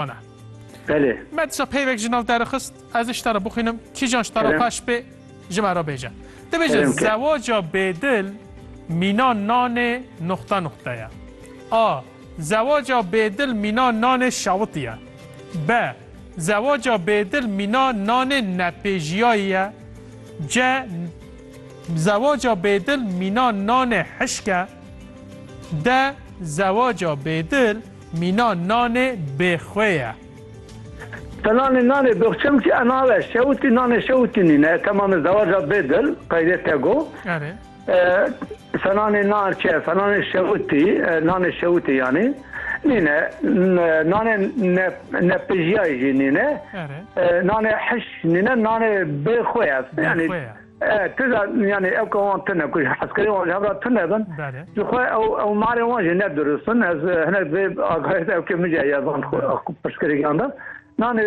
Ana. Belê. Me disa peyvek ji nav te re xist. Ez ê ji te re bixwînim. Kîjan ji te re xweş bê ji me re bêje. Dibêje zewaca bêdil mîna nanê nuxta nuxta ye. A. Zewaca bêdil mîna nanê şawitî ye. B. Zewaca bêdil mîna nanê nepêjiyayî ye. C. Zewaca bêdil mîna nanê hişk e. D. Zewaca bêdil Mîna nanê bê xwe ye. Te nanê nanê bê xwe çem ki e nabe şewitî nanê şewitî nîn e temamê zewaca bê dil qeydê te go. Erê. Te nanê nan çi te nanê şewitî nanê şewitî yanî nîn e nanê nepijîyayê jî nîn e nanê hiş nîn e nanê bê xwe ye yanî. Tira yani ew ka wan tune ku heskerê wan ji hev re tune bin ji xwe ew ew marê wan jî ne durust bin ez hinek vê agayet ew kê mijya ya van pirsgirêkan de nanê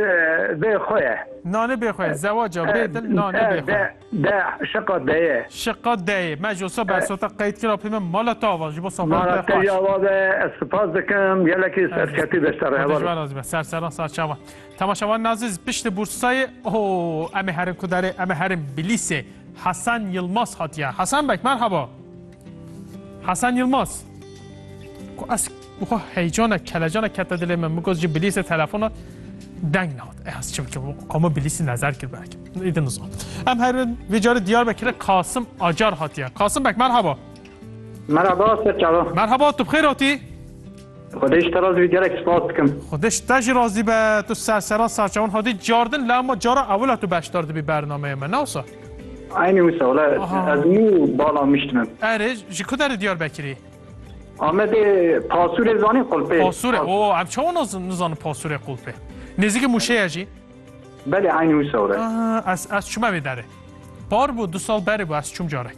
bê xwe ye nanê bê xwe zewaca bê din nanê bê xwe de şiqa deyê şiqa deyê me ji sa bersota qeyd kira pê min mala tava ji bo safan te ya ve ez spas dikim gelekî serketî beşdarê heval serseran sarçava Temaşevan Naziz piştî Bursayê ho em ê herin ku derê em ê herin Bilîsê Hesen Yilmaz hatiye. Hesen Beg merhaba. Hesen Yilmaz. Ku ez xwe heycana kelecana kete dilê min min got ji Bilîsê telefona deng nehat. E ez çi bikim qama Bilîsê nezer kir belki. Îdin nizan. Em herin vê carê Diyarbekirê Kasim Acar hatiye. Kasim Beg merhaba. Merhaba Serçava. Merhaba tu bixêr hatî. Xwedê ji te razî be gelek spas dikim. Xwedê ji te jî razî be tu sersera serçe hûn hatî cardin la ma cara ewila tu beşdar dibî bernameyê me nawsa. Eynî wisa wala ez nû bala miştibim. Erê ji ku derê Diyarbekirî? Amedê Pasûrê zanî qulpê. Pasûrê o em çawa nizanin Pasûrê qulpê. Nêzîkê Mûşeyê jî? Belê eynî wisa wala. Ez ez çûme vê derê. Par bû du sal berê bû ez çûm carek.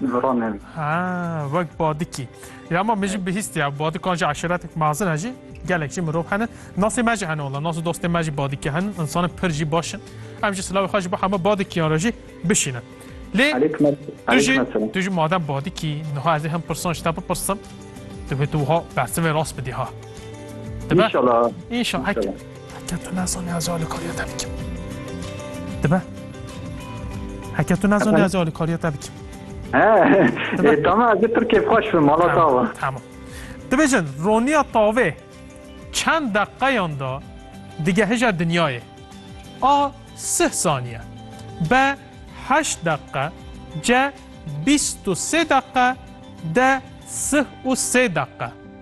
Ziran hevî. Ha, wek badikî. Ya ma min jî bihîst ya badikan jî eşiretek mezin e jî gelek jî mirov hene. Nasê me jî hene wala, nas û dostê me jî badikî hene. Însanan pir jî baş in. Em jî silavê xwe ji bo hema badikiyan re jî bişînin. Lê tu jî tu jî madem badikî niha ez ê hin pirsan ji te bipirsim. Divê tu wiha bersivê rast bidî ha. Dibe? İnşallah. İnşallah. Heke tu nezanî ez ê alîkariya te bikim. Dibe. Heke tu nezanî ez ê alîkariya te bikim. He, tamam ez ê pir kêfxweş bim mala tawa. Tamam. Dibêjin roniya tavê çend deqeyan da digehije dinyayê. A sih saniye. B heşt deqe. C bîst û sê deqe. D sih û sê deqe.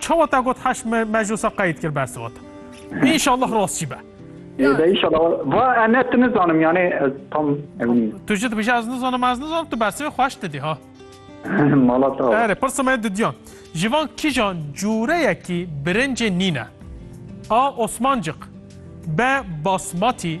Çawa te got heşt meclisa qeyd kir bes vat. İnşallah rast jî be. Êde inşallah va ene tu nizanim yani ez tam emin nîm. Tu jî dibêje ez nizanim ez nizanim tu bersivê xweş didî ha. Mala te. Erê pirsa me didiyan. Ji van kîjan cureyekî birincê nîne. A Osmancik. B Basmati.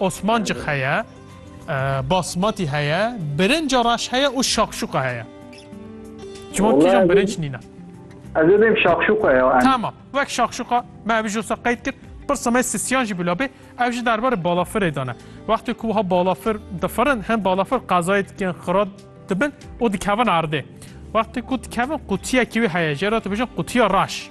Osmancik heye, basmati heye, birinca raş heye û şakşuka heye. Ji wan kîjan birinc nîna? Ez ê bêm şakşuka ya. Tamam. Wek şakşuka me ev jî wisa qeyd kir. Pirsa me sisiyan jî bila bê. Ev jî derbarê balafirê dane. Wextê ku wiha balafir difirin, hin balafir qezayê dikin, xira dibin û dikevin erdê. Wextê ku dikevin qutiyekî wê heye jê re dibêjin qutiya raş.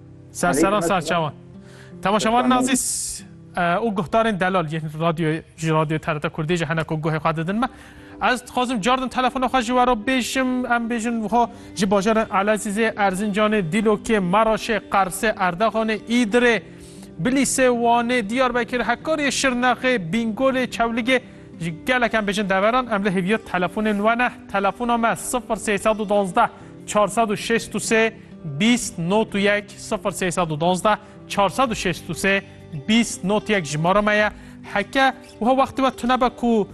Ser serran sar çawan. Temaşevan Nazîs û guhdarên delal yên radyo ji radyo TRT Kurdê ji hene ku guhê xwe didin me. Ez dixwazim cardin telefona xwe ji wero bêjim em bêjin xwe ji bajarên Elezîzê, Erzincanê, Dîlokê, Maraşê, Qersê, Erdaxanê, Îdirê, Bilîsê, Wanê, Diyarbekir, Hekarê, Şirnexê, Bîngolê, Çewligê ji gelek em bêjin deveran em li hêviya telefonên we ne. Telefona me 0312 463 Bîst not û yek sifir sê sed û dozdeh çar sed û şêst û sê bîst not yek jimara me ye heke wiha wextê we tunebe ku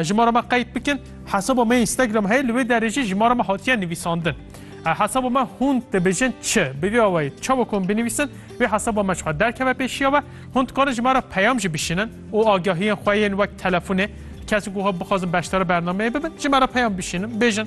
jimara me qeyd bikin hesaba me Instagram heye li wê derê jî jimara me hatiye nivîsandin hesaba me hûn dibêjin çi bi vê awayî çawa ku hûn binivîsin wê hesaba me çiwa derkeve pêşiya we hûn dikarin ji me re peyam jî bişînin û agahiyên xwe yên wek telefonê kesê ku xwe bixwazin beşdara bernameyê bibin ji me re peyam bişînin bêjin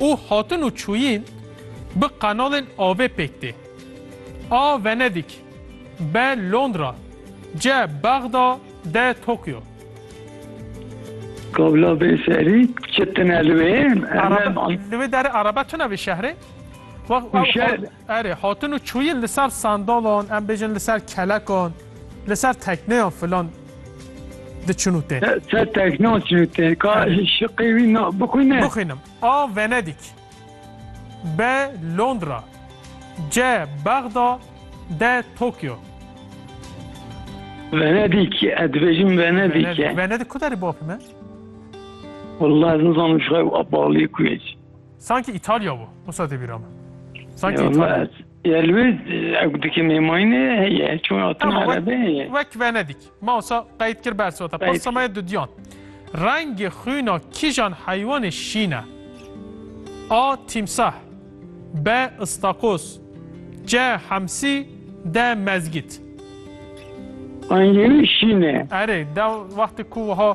Û hatin û çûyîn bi qenalên avê pêk tê. A Venedîk, B Londra, C Bexda, D Tokyo. Kabla bê serî çi tine li wê? Li wê derê Araba çi navê şehrê? Û şer. Erê, hatin û çûyin li ser sandalan, em bêjin li ser kelekan, li ser tekneyan filan diçin û tên. Li ser tekneyan diçin û tên. Ka şiqê wî na bixwîne. Bixwînim. A Venedîk. B Londra. C Bexda. D Tokyo. Venedîk. Ez dibêjim Venedîk e. Venedîk ku derê bapî me? Walla ez nizanim ji xwe ew balê ku ye. Sanki Îtalya bû. Wisa tê bîra min. Sanki Îtalya. Ya li wê ew dikê mêmayînê heye. Çûna hatina Tamam, erebê heye. Wek Venedik. Ma wisa qeyd kir bersiva te. Qeyd Pirsa me kir. ye dudiyan. Rengê xwîna kîjan heywanê şîn e? A. Tîmsah B. Istakoz C. Hemsî D. Mezgît Rengê wî şîn e. Erê, dew wextê ku wiha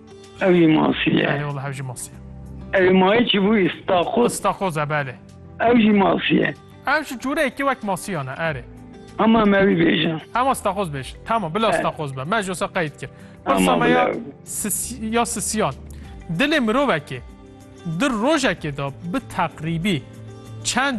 Ewi masî ye. Belê wela ew jî masî ye. Ewi mayê çi bû îstakoz. Îstakoz e belê. Ew jî masî ye. Ew ji cureyekî wek masiyan e erê. Hema em ewî bêjin. Hema stakoz bêjin. Tamam bila stakoz be. Me ji wisa qeyd kir. Pirsa me ya ya sisiyan. Dilê mirovekê di rojekê de bi teqrîbî çend